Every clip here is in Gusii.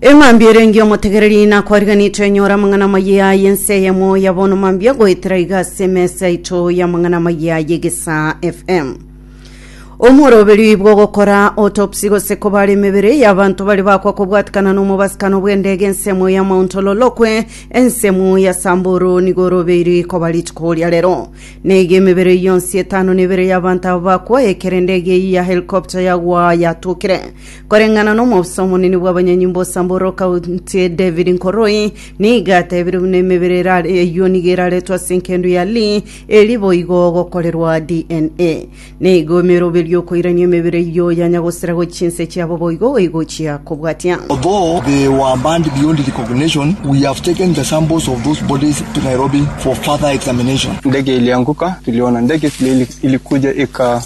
Eng'ambi ere engiya omotegereri nakoriganetwe enyore amang'ana amayia aye ense eyemo ya bono mambia goetera iga ase emesa yaito y'amang'ana amayia aye Gesaa FM. Omworoberio oyi bw'ogokora autopsy gose kobara emebere y'abanto bare bakwa kobwatikana n'omobasikano bw'endege ensemo ya Mount Ololokwe ensemo ya Samburu nigo orobeiri koba rituko ria rero. Neiga emebere eyio yonsi etano nebere y'abanto aba bakwa ekero endege eyio ya helicopter yagwa yatokire Koreng'ana n'omofisa omonene bw'abanyanyimbo o Samburu County David Nkoroi, nigo atebire buna emebere erare eyio nigo eraretwe ase enkendo ya Li eri boigo gokorerwa DNA. Nigo emeroberio okoirania emebere eyio yanya gosira gochia chinse chiabo boigo egochia kobwatia. Although they were banned beyond recognition, we have taken the samples of those bodies to Nairobi for further examination. Ndege ilianguka, tuliona ndege vile ilikuja ika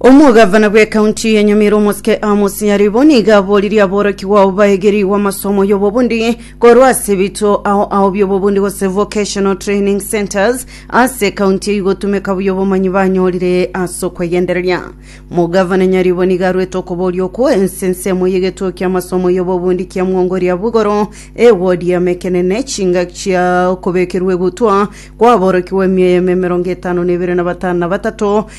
Omogavana bw'ecounty ya Nyamira omosike Amos Nyaribo nigo aboririe aborokigwa ao baegerigwe amasomo y'obobundi korwa ase ebituo ao ao by'obobundi gose vocational training centres ase ecounty eyio gotumeka buya obomanyi banyorire ase okwegendereria. Mogavana Nyaribo nigo arwete okoboria okwo ense ensemo y'egetuo ki'amasomo y'obobundi kia Mwongoria bw'igoro, ewodi ya Mekenene, chingaki chia okobekerwa egutwa kw'aborokigwa emiya y'eme emerongo etano na ebere na batano na batato,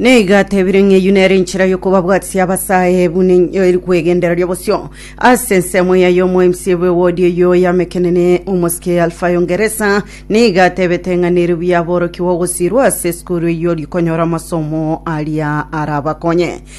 Neiga atebire ng'a eyio nere enchera y'okobabwatisia abasae buna enyo eri kwegendereria bosio ase ensemo yaye omoemisi bwe wodi eyio y'amekenene omosike ya Alfayo Ngeresa nigo atebete ng'a nere buya aborokigwe ogosirwa ase esukuru eyio rikonyora amasomo aria arabakonye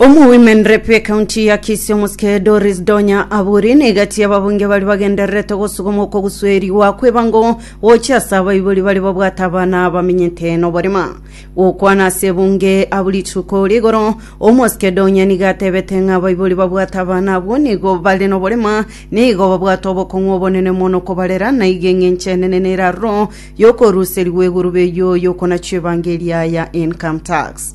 Omowomen rep bw'ecounty ya Kisii omosike Doris Donya Aburi nigo atie ababunge baria bagendererete gosuguma okoguswerigwa kw'ebango gochia ase abaibori baria babwate abana bamenyete noborema. Gokwana ase ebunge abwo rituko rigoro, omosike Donya nigo atebete ng'a abaibori babwate abana abwo nigo bare noborema, nigo babwate obokong'u obonene mono kobarera, na igo eng'encho enene nere aroro y'okoruserigwa egurube eyio y'okonachwa ebango eria ya income tax.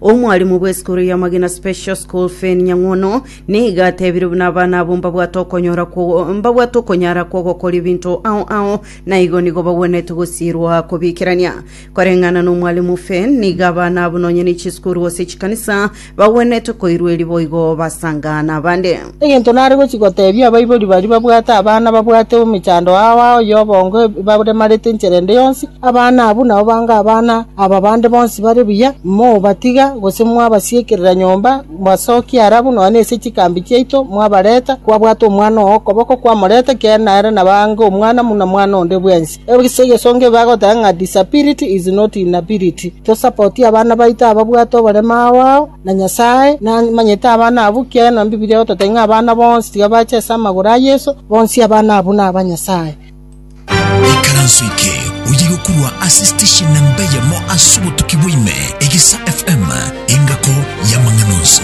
Omwalimu bw'esukuru ya Magina Special School Fane Nyang'wono nigo atebire buna abana abwo mbabwate okonyora kwo- mbabwate okonyara kw'ogokora ebinto ao ao na igo nigo bagwenerete gosiirwa kobikerania. Koreng'ana n'omwalimu Fane, nigo abana abwo nonya ne chisukuru gose chikanisa bagwenerete koirwa eri boigo basanga nabande. Egento nare gochia goteebia abaibori baria babwate abana babwate omechando ao ao ya obongo ebaremarete enchera ende yonsi, abana abwo nao bange abana aba bande bonsi bare buya, mobatiga gose mwabasiekerera nyomba, mbasokia ara abwo nonya nase chikambi chiaito, mwabareta, kwabwata omwana oo okoboko, kwamoreta, ekiagera nere naba ange omwana buna mwana onde bwensi. Ase egesongo ebe bagoteba ng'a disability is not inability. Tosapotie abana baito ababwate oborema ao ao. na Nyasae namanyete abana abwo, ekiagera Bibilia egototebia ng'a abana bonsi tiga bache ase amagoro a Yeso, bonsi abana abwo naba Nyasae. Ikaranso eke oyegokurwa ase station namba eyemo ase obotuki bwa ime, Egesa FM, engako y'amang'ana onsi.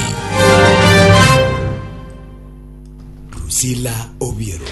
Drusilla Obiero.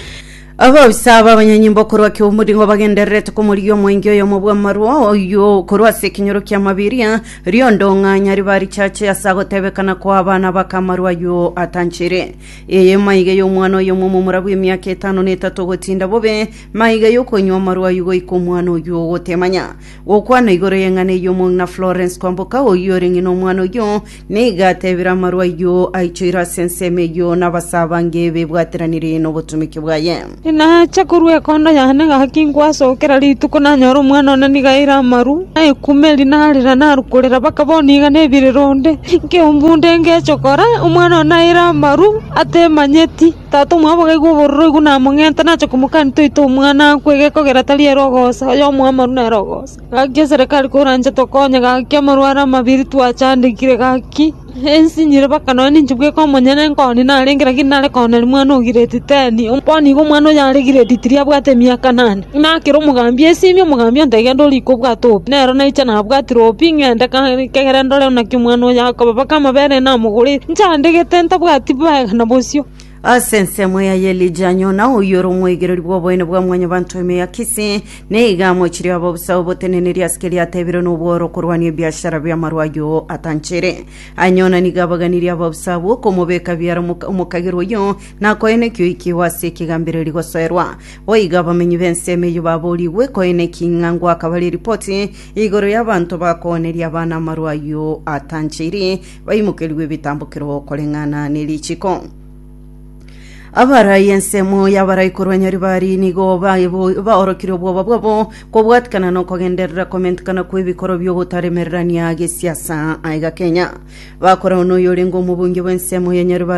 Abaofisa b'abanyanyimbo korwa ki'omoringo bagendererete komorigia omwenge oyomo bw'amarwa oyio korwa ase ekenyoro kia mabiria riondong'anya riba richache ase agotebekana kwa abana bakamarwa ayio atanchere eye maiga y'omwana oyomo omomura bw'emiaka etano na etato ogotinda bobe maiga y'okonywa amarwa ayio goika omwana oyio ogotemanya gokwana igoro y'eng'ana eyio omong'ina Florence Kwamboka oyio ore ng'ina omwana oyio Nigo atebire amarwa ayio aichoire ase ensemo eyio na abasabange bebwateranire nobotomiki bwaye. Inache korwa ekondo yane gaki ngwasoe kera rituko nanyore omwana one nigo aire amaru, na ekume eri narera naru korera mpaka bono iga nebirire onde. Nkeo mbunde ngeche kora, omwana one aire amaru atemanyeti. Tata omwabo gaigwe obororo oigwe namong'enta nache komokania toite omwana akwe egekogera tari ere ogosa, oyomo amaru nere ogosa. Gaki eserekari koranche tokonye, gaki amarwaro amabiri twachandekire, gaki ense inyire mpaka nonya ninche bweka omonyene nkoni narenge, lakini nare koonera omwana o grade ten. Bono igo omwana oyo are grade three abwate emiaka nane, nakera omogambi esimi, omogambi onte genda orike obwate obi. Nero naiche nabwatire obi, ng'ende ka kegere ndore naki omwana oyo akoba, mpaka amabere namogorete nchandegete ntabwati bwega na bosio. Ase ensemo eye y'Elija Yona, oyio ore omoigereri bw'oboene bwa Mwanyabaanto ime ya Kisii, nigo amochirie abobisa oboteneneri ase keria ateebirwe nobworo okorwania ebiashara bi'amarwa ayio atanchere. Aye Yona nigo abaganirie abobisa abwo okomobeka biara omoka- omokagerwa oyio, na koina ekioyi kiao ase ekegambereri gosoerwa. Boigo abamenyi b'ensemo eyio baboorigwe koina eki ng'a ngoakabare eripoti igoro y'abanto bakooneria abana amarwa ayio atanchere, baimokerigwe ebitambokero koreng'ana nerichiko. Abarai ensemo y'abarai korwa Nyaribari nigo baebo- baorokire obwoba bwabo kobwatikana na okogenderera komentikana kw'ebikoro bi'ogotaremererania gesiasa aiga Kenya. Bakorana noyorenge omobunge bw'ensemo ya Nyaribari